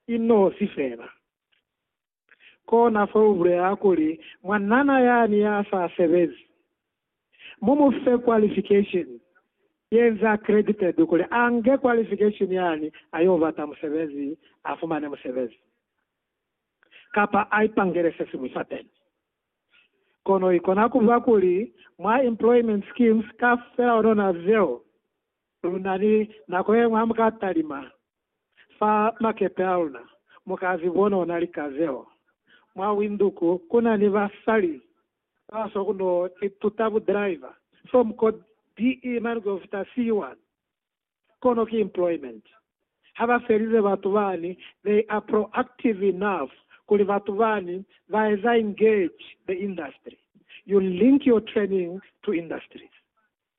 i nosi fela. Kona fa u bulela kuli, Mwanana yani ya sa sebezi, mu mu fe qualification ye nze accredited kuli a nge qualification yani a yo bata musebezi, a fumane musebezi, kapa a ipangele se siñwi fateni. Kono i kona ku ba kuli, mwa employment schemes kafela onona zeo, Luna ni nako yeñwi hamuka talima fa makepe aluna, muka zi bonona lika zeo. Mwa Windhoek kuna ni basali baso kuno ituta bu driver from ko DE mane kuyofita C1, kono ki employment habafelize batu bani, they are proactive enough kuli batu bani baeza engage the industry, you link your training to industries.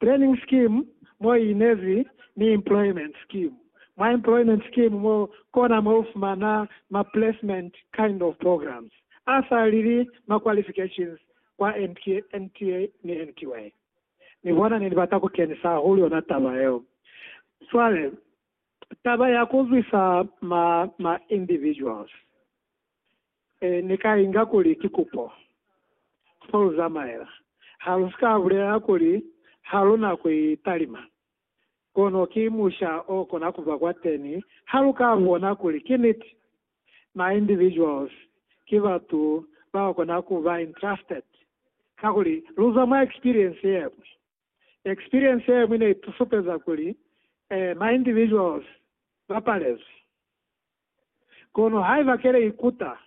Training Scheme mo i inezi ni Employment Scheme. Mwa Employment Scheme mo kona mo u fumana ma Placement kind of programs a sa lili ma qualifications kwa NTA ni NQA. Ni bona ne ni bata ku kenisa hahulu yona taba yeo. Cwale, taba ya ku zwisa ma, ma individuals, Ee, ni ka inga kuli ki kupo, fa lu zamaela. Ha lu si ka bulelela kuli ha lu na ku i talima. Kono ki musha o kona ku ba kwateni ha lu ka bona kuli ki niti. Ma individuals ki batu ba ba kona ku ba interested, kakuli lu zama experience ye ñwi. Ekspiriensi yeñwi ne itusupeza kuli ma individuals ba palezwi. Kono haiba kele ikuta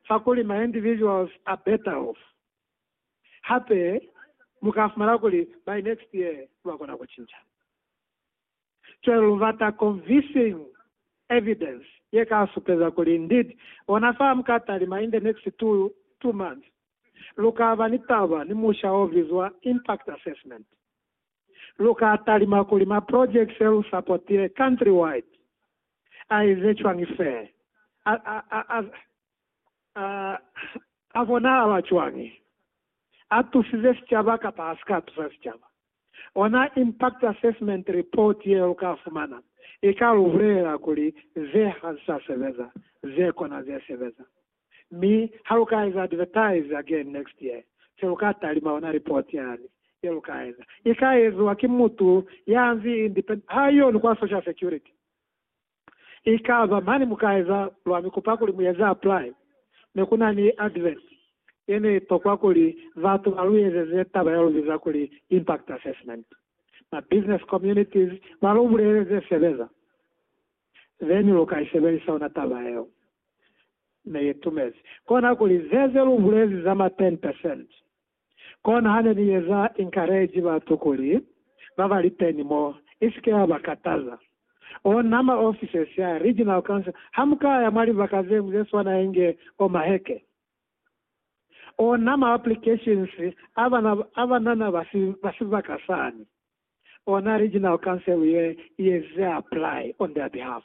fa kuli ma individuals are better off, hape mu ka fumana kuli by next year lwa kona ku cinca. Cwale lu bata convincing evidence ye ka supeza kuli indeed ona fa mu ka talima in the next two two months lu ka ba ni taba ni musha o bizwa impact assessment. Lu ka talima kuli ma projects e lu supportile countrywide a eze cwañi fe, a, a, a, a, a, a bonahala cwañi, a tusize sicaba kapa ha si ka tusa sicaba. Ona Impact Assessment Report yeo uka fumana, ika lu bulelela kuli ze ha si sa sebeza, ze kona ze sebeza. Mi ha lu ka eza advertise again next year, se lu ka talima ona report yani ye lu ka eza. I ka eziwa ki mutu ya nzi independent, ha i yoni kwa Social Security. Ikaba mane mukaeza lwa mi kupa kuli mu eze apply, ne kuna ni advert yene itokwa kuli batu ba lu ezeze taba ya lu biza kuli impact assessment. Ma business communities ba lu bulele ze sebeza, then lu ka isebelisa ona taba yeo. Ne itumezi kona kuli ze ze lu bulezi za ma 10 percent Kona ha ne ni eza encourage batu kuli ba ba li teni mo, i si ke ya ba kataza. Ona ma offices a Regional Council ha mu ka ya mwa libaka ze ñwi ze swana inge bo Maheke. Ona ma applications a bana, a banana ba si, ba sibaka sani. Ona Regional Council ye, i eze apply on their behalf.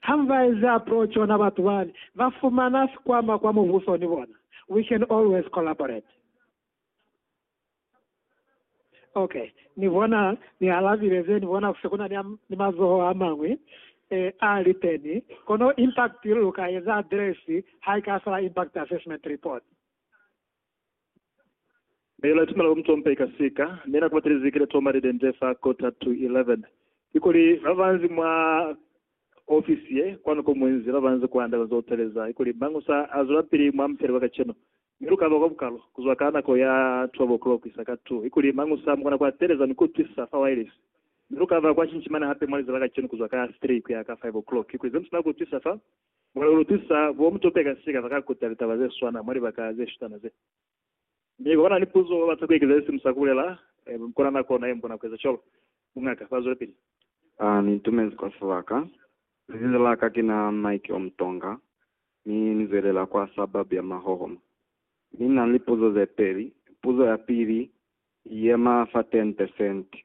Hambaezi approach ona batu bani ba fumana sikwama kwa mubuso ni bona. We can always collaborate. Ok, ni bona ni alabile ze ni bona kuse kuna ni mazoho a mañwi e a li teni. Kono impact lu ka eza address ha i ka sala impact assessment report. Meyolo itumela ku mutompa ika sika, mi na kubatelezi ki letoma li lende fa quarter to 11. Kikuli babanzi mwa ofisi ye, kwanu ko munzi, babanzi kwande bazo teleza, kikuli mañi usa azwelapili mwa mupyali wa kacenu, mi lukaba kwa bukalo, kuzwa ka nako ya 12 o'clock kuisa ka 2, kikuli mañi usa mukona kwa teleza ni ku utwisisa fa wailesi, mi lukaba kwa cincimana hape mwa liza la kacenu kuzwa ka 3 kuya ka 5 o'clock, kikuli zemusina ku utwisisa fa. Bulaulutisa bo mutope kasika ba ka kuta litaba ze swana mwa libaka ze shutana ze. Mi ku bana ni puzo ba bata ku ekeza isimu sa ku bulela, ku na nako na ye mbuna ku eza cwalo. Bungaka ba zwelapili. A Ni tumezi kwa sibaka. Libizo la ka ki na Mike Omutonga, mi ni zwelela kwa suburb ya Mahohoma. Mi ni na ni lipuzo ze peli. Puzo ya pili i yema fa 10 pesenti.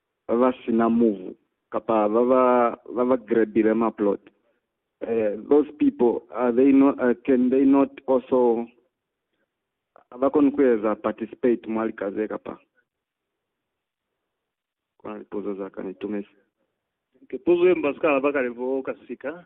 ba ba si na mubu kapa ba ba ba ba grabile ma plot eh, those people are they no, uh, can they not also abakoni kueza participate mwa lika ze kapa kona lipuzo zaka nitumisi. Ke puzo ye mba sikalaba kale bo ka sika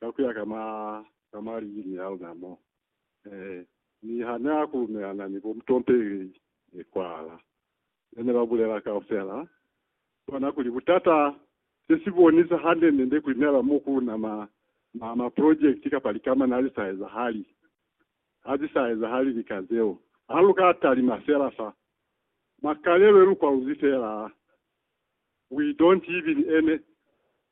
ka kuya ka ma ka malilimi a luna mo eh ni ha ne a kulumelana ni bomutompeli e kwala ne ne ba bulela kaufela bona kuli butata se si bonisa hande ne ne kuli ne ba mo kuluna ma ma ma project kapa likamana ha li sa ezahali ha zi sa ezahali lika zeo ha lu ka talima fela fa makalelo e lu kwaluzi fela we don't even any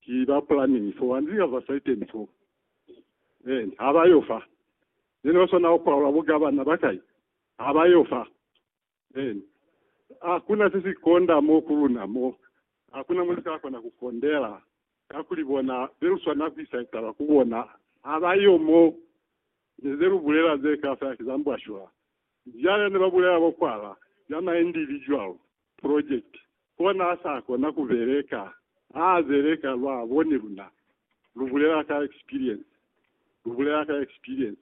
Ki ba pulaniñi fo? Anzi ka za Saiteni fo? Eeni, ha ba yo fa. Ne ni ba swana ku kwaula bo gabana ba kai? Ha ba yo fa. Eeni, ha ku na se si konda mo ku luna mo. Ha ku na mo si ka kona ku kondela, kakuli bona be lu swana ku isa litaba ku bona, ha ba yo mo. Ne ze lu bulela ze kaufela ki za mbwashula. Cwale ne ba bulela bo kwala, za ma indivi cwalo. project kona a sa kona ku beleka ha a beleka lwa bone luna lu bulela ka experience lu bulela ka experience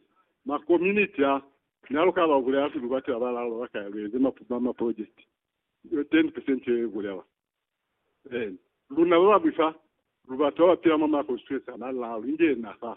ma community a ne ha lu ka ba bulela kuli lu bate ba balala ba bakaya lu eze ma ma ma project yo 10 percent ye bulela then luna ba ba mwi fa lu batu ba ba pila mwa ma constituency a malala lu inge na fa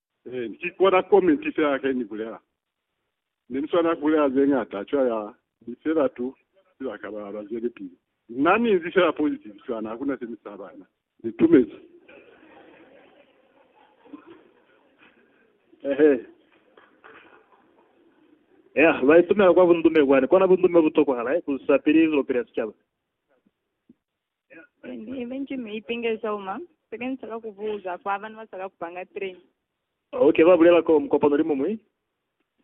He, ki kona komenti fela ke ni bulela. Ne ni swanela ku bulela ze ngata cwa ya ni fela tu ki ba ka ba ba zwele pili. Na ni inzi fela positive cwana, hakuna se ni sa bana. Ni tumezi. Ehe. Ya, ba itumela kwa bundume kwani. Kona bundume bu tokohala, he, ku sa pili lizo pili ya sicaba. Ni be nji mi ipingeza uma, se ke ni sa ka ku buza, kwa ba ni ba sa ka ku panga train. Ok, ba bulela ko mukopano li muñwi.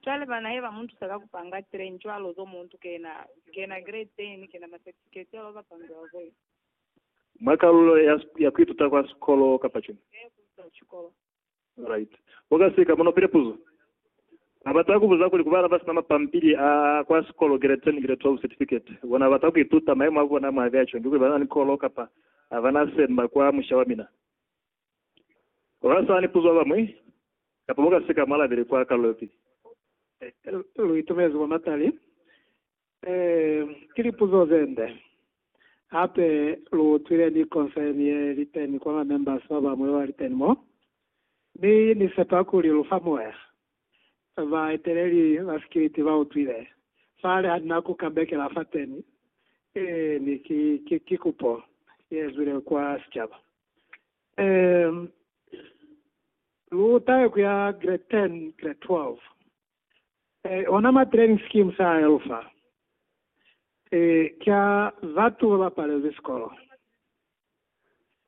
Cwale bana heba muntu sa ka ku panga train, cwalo zo muntu kena, kena grade 10, ni kena ma certificate, cwalo ba pangiwa koi. Mwa kalulo ya, ya ku ituta kwa sikolo kapa cwini? Ye ku ituta ku sikolo. Right. Bo ka sika muno pili puzo. Na bata ku buza kuli ku bana ba sina mapampili a kwa sikolo grade 10 grade 12 certificate bona bata ku ituta maemo a bona mwa beya congi kuli bana ni kolo kapa a bana semba kwa musha wa mina. Bo ka sani puzo ba bamwi kapa bo ka sika mu alabele kwa kalulo yo pili. Lu itumezi kwa matali Ee, ki lipuzo ze nde. Hape lu utwile ni concern ye li teni kwa ba members ba bañwi ba ba li teni mo, mi ni sepa kuli lu fa moya. Baeteleli ba sikiliti ba utwile, fa li hanna ku kambekela fateni. Ee, mi ki, ki, ki kupo ye zwile kwa sicaba. Ee, lu tahe ku ya grade 10, grade 12. E, ona ma training schemes a yeo fa. E, ki a batu ba ba palezwi sikolo.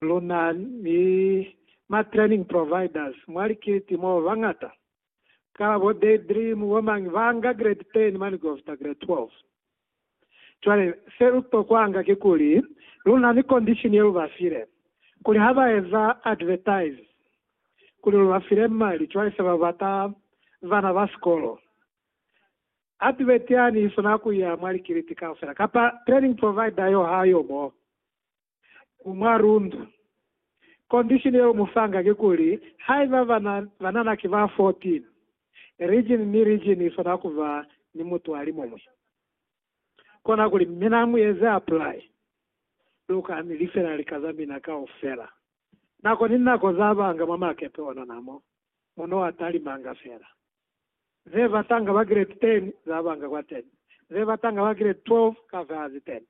Luna ni ma training providers mwa likiliti mo bañata, kala bo Daydream, bo mañi, ba nga grade 10 mani kuyofita grade 12. Cwale, se lu tokwanga kikuli, lu na ni condition ye lu ba file, kuli ha ba eza advertise, kuli lu ba file mali, cwale se ba bata bana ba sikolo. Advert yani i swana ku ya mwa likiliti kaufela, kapa training provider yo ha yo mo. ku mwa lunda. Kondishini yeo mu fanga kikuli haiba bana, banana ki ba 14, rijini ni rijini iswana kuba ni mutu alimuñwi. Kona kuli, Mina mu eze apply, lu ka mi lifela lika za mina kaufela, nako ni nako za banga mwa makepe onana mo, mu no wa talimanga fela. Ze batanga ba grade 10 za banga kwa 10, ze batanga ba grade 12 ka za 10.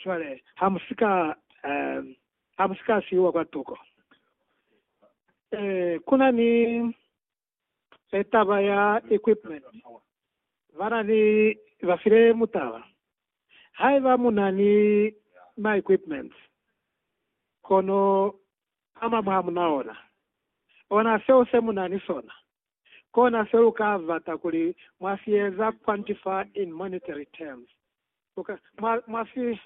Cwale, ha mu si ka, um, ha mu si ka siwa kwa tuko. Eh, ku na ni eh, taba ya equipment. Ba na ni, ba file mutala. Haiba mu na ni ma equipment, kono a mamwe ha mu na ona. Ona seo se mu na ni sona. Kona se lu ka bata kuli mwa si eza, quantify in monetary terms. Lu ka, mwa, mwa si.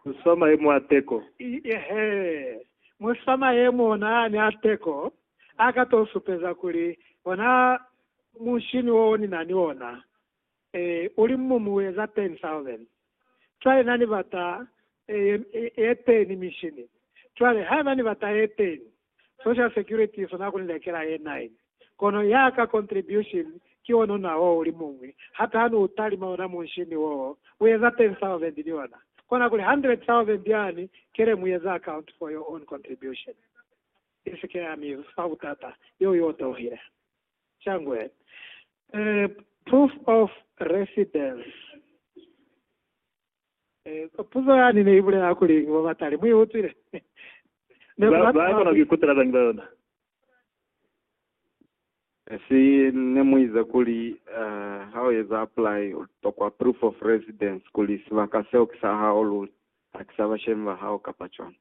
Mu swa mayemo a teko. Ehe. Mu swa mayemo onani a teko a ka to supeza kuli ona mushini wo ni na ni ona, eh, u li mumu u eza 10,000. Cwale na ni bata, eh, ye, ye teni mishini. Cwale, haiba ni bata ye teni, Social security isona ku ni lekela ye nine. Kono ya ka contribution ki ona na o uli muñwi. Hatanu u talima ona munshini woo, u eza ten thousand ni ona. Kona kuli hundred thousand yani kele mu eza account for your own contribution. I si ke ya mi fa butata, yeo i otohile. Sha ngwe, eh, proof of residence. Puzo yani ne ibulela kuli ki bobatali. Mu iutwile? Ne ku na taba ba ikutela bañi ba yona. Si ne mu ize kuli, ha u eza apply, u tokwa proof of residence kuli sibaka seo ki sa hao luli, ha ki sa bashemi ba hao kapa cwana.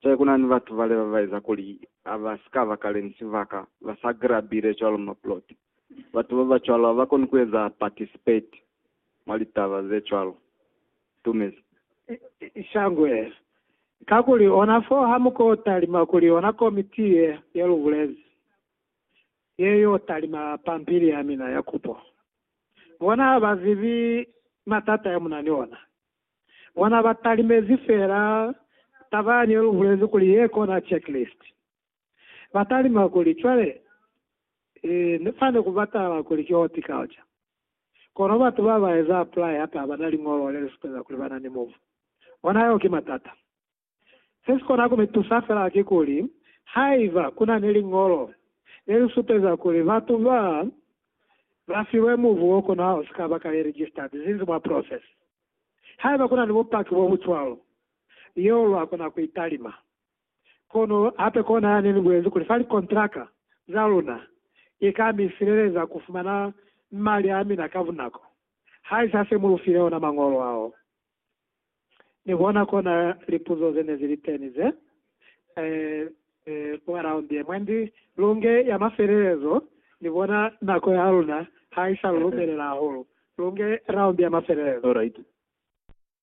Cwale ku na ni batu bale ba ba eza kuli ha ba si ka ba kale ni sibaka ba sa grabile cwalo mwa plot. Batu ba ba cwalo ha ba koni ku eza participate mwa litaba ze cwalo. Tumezi. Shangwe. Kakuli ona foo ha mu ko talima kuli ona komiti ye, ye lu bulezi, ye yo talima pampili ya mina ya kupo. Bona ha ba zibi matata ya mu na ni ona. Bona ba talimezi feela taba yani ye lu bulezi kuli ye kona checklist. Ba talima kuli, Cwale, eh, ne fa ne ku batala kuli ki horticulture. Kono batu ba ba eza apply hape ha ba na liñolo le li supeza kuli ba na ni mubu. Bona, yeo ki matata. Se si kona ku mi tusa fela kikuli haiba ku na ni liñolo le li supeza kuli batu ba ba filwe mubu o konaho si ka ba kale registered zinzi mwa process. Haiba ku na ni bupaki bo bu cwalo, yeo lwa kona ku i talima. Kono hape kona yani ni bulezi kuli fa likontraka za luna, i ka mi sileleza ku fumana mali a mina ka bunako, haisa se mu lu file ona mañolo ao. Ni bona kona lipuzo ze ne zi li teni ze, eh, eh, around ye mwendi lunge ya mafelelezo, ni bona nako ya luna ha i sa lu lumelela hahulu, lunge around ya mafelelezo. All right.